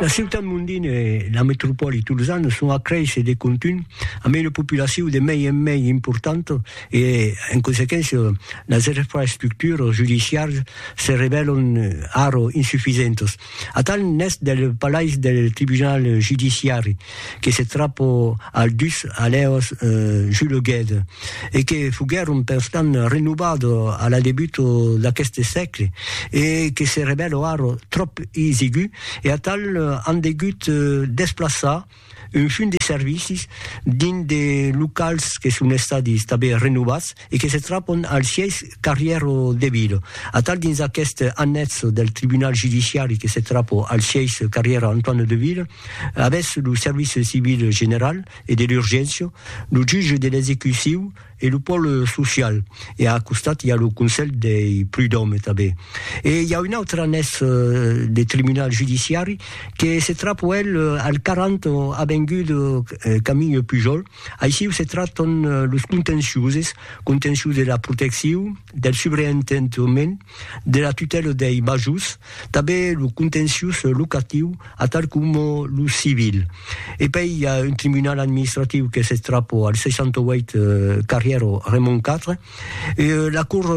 La ciutat mondina e la metropòli tolosana son a créisser de contunh amb una populacion de mei en mei importanta e, en consequéncia, las infraestructuras judiciaras se revèlan ara insufisentas. Atal n'es del palais del tribunal judiciari. que se trapo al dus alèos juleguèt e que foguèron perstant renovado a la debuto d'aqueste sègle e que se revèlo ara tròp isigu e atal an degut desplaçar un fum de servicis dins de locals que son estadis tanben renovats e que se trapon al sièis Carrièro de Vila. Atal dins aquest annètz del tribunal judiciari que se trapo al sièis Carrièro Antoine de Vila, Avètz lo service civil general e de l'urgéncia, lo jutge de l'execuciu e lo pòle social e a costat i a lo conselh dei prud'òme tanben. E i a un autre anés de tribunal judiciari que se trapo el al 40 avenguda Camille Pujol, aissiu se traton los contenciuses, contencius de la protecciu, del subreentendement, de la tutèla dei majors, tanben lo contenciós locatiu atal coma lo civil. E pei i a un tribunal administratiu qu'es eth trapo al 68 carrièr Raymond 4, la cort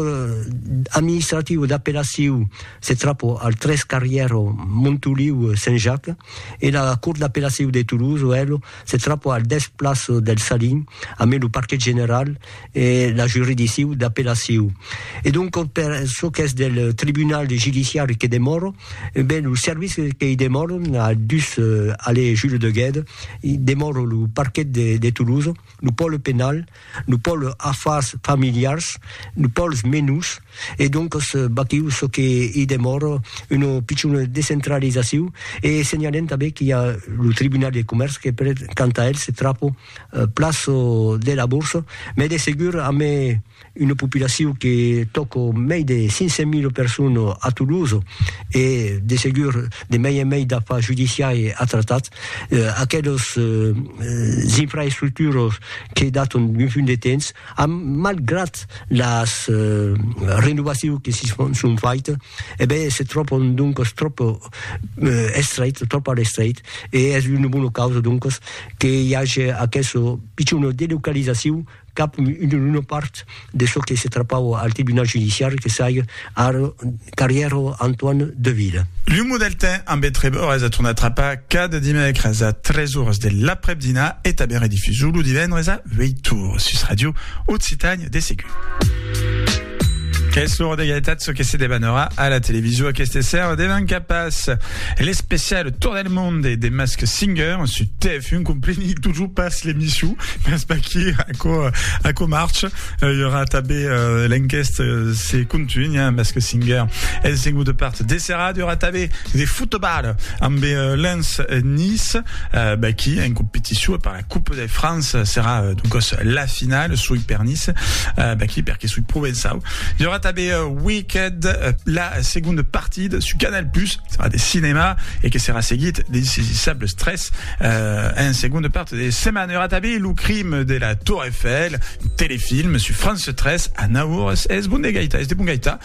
administrativa d'apellacion s'eth trapo al 3 carrièr Montoliu Saint Jacques e la cort d'apellacion de Toulouse, elo, se trapò al dètz plaço del Salin, amé lo parquet general e la juridicciu d'apellaciu. E donc per çò qu'es del tribunal judiciari que demòro, ben lo service que i demòro, a dus allée Jules de Guède, i demòro lo parquet de Toulouse, lo pòle penal, Nos pòls afars familiars, nos pòls menus, e doncas baquiu çò que i demòra, una pichona descentralizaciu, e senhalem tanben qu'i a lo Tribunal de Comèrç que per tant a el se trapa plan de la borsa, mès de segur amé una populaciu que tòca mei de 500 mil personas a Toulouse e de segur de mei en mei d'afars judiciari a tratar, eh, aquelos eh, infraestructuros que daton d'un punt de temps, a, malgrat las eh, renovacions que si son, son faites, eh ben, se tròpon donc trop eh, estrait, trop a l'estrait, e es una bona causa donc que hi hagi aquesta pitjona delocalizacion cap una part de çò que se trapava al tribunal judiciari que saiga ara carrièra Antoine Deville. Lo Modeltin ambe treb ores a tornar trapar cada dimècres a 3 ores de l'aprèp-dinar e tanben redifusor lo divendres a 8 ores sus Radio Occitània de segur. Qu'es l'ora de gaitat çò que se debanarà a la television aqueste sèrre devan capas. L'especial Tour del monde de Mask Singer su TF1 compreni totjor pas l'emission, mas vaquí aquò, aquò marche. I aurà tanben l'enquèsta se contunha amb Mask Singer. Es en auta part de serada i aurà tanben de fotobal amb Lens Nice, vaquí en competició per la Coupe de France serà donc la finale sui per Nice, eh, ben qui perché sui Provençau. Il y aura també uh, Wicked, uh, la seconda partida su Canal+, Plus, serà de cinema e que serà seguit de Insaisissable Stress uh, en seconda part de setmana. Il y aura també Lo crime de la Tour Eiffel, un telefilm su France 3 a 9 horas. Es bon de gaita, es de bon gaita.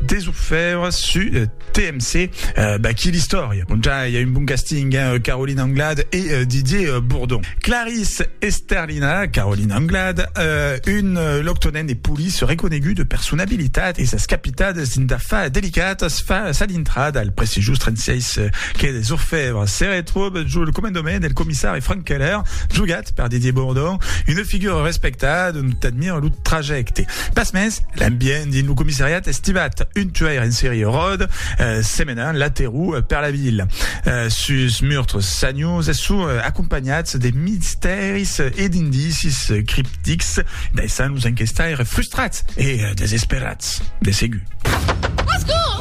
Des orfèvres su TMC, ben quina istòria! Bon ja i a un bon casting, hein, Caroline Anglade e Didier Bourdon. Clarisse Esterlina, Caroline Anglade, un loctonèn e police reconegut de personabilitat e sas capitades dins d'afars delicats fa sa dintrada al prestigiós 36 quai des Orfèvres. Se retròba jo lo comandament del comissari Frank Keller, jogat per Didier Bourdon, una figura respectada dont admira lo trajècte. Pasmens, l'ambient dins lo comissariat es tibat un tuair en serie ròde, semenant la terror per la vila. Sos meurtres sanius son acompanhats de mistèris e d'indicis criptics, daissant los enquestaires frustrats e desesperats de segur.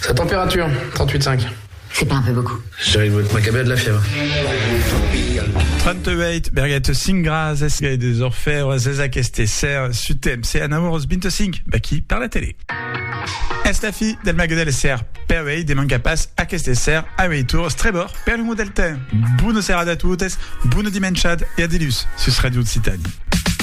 Sa température, 38 cinq. C'est pas un peu beaucoup? Je dirais que votre macabe a de la fièvre. 38 berguet cinc gras es gai des orfèvres es aqueste ser su temps e anaur os 25 vaquí per la tele. Es la fi del mague del ser per uei de manca pas aqueste ser a uei tours trebor per l'umo del temps. Bona serada a totes, bona dimenchad e a dilús sus Radio Occitanie.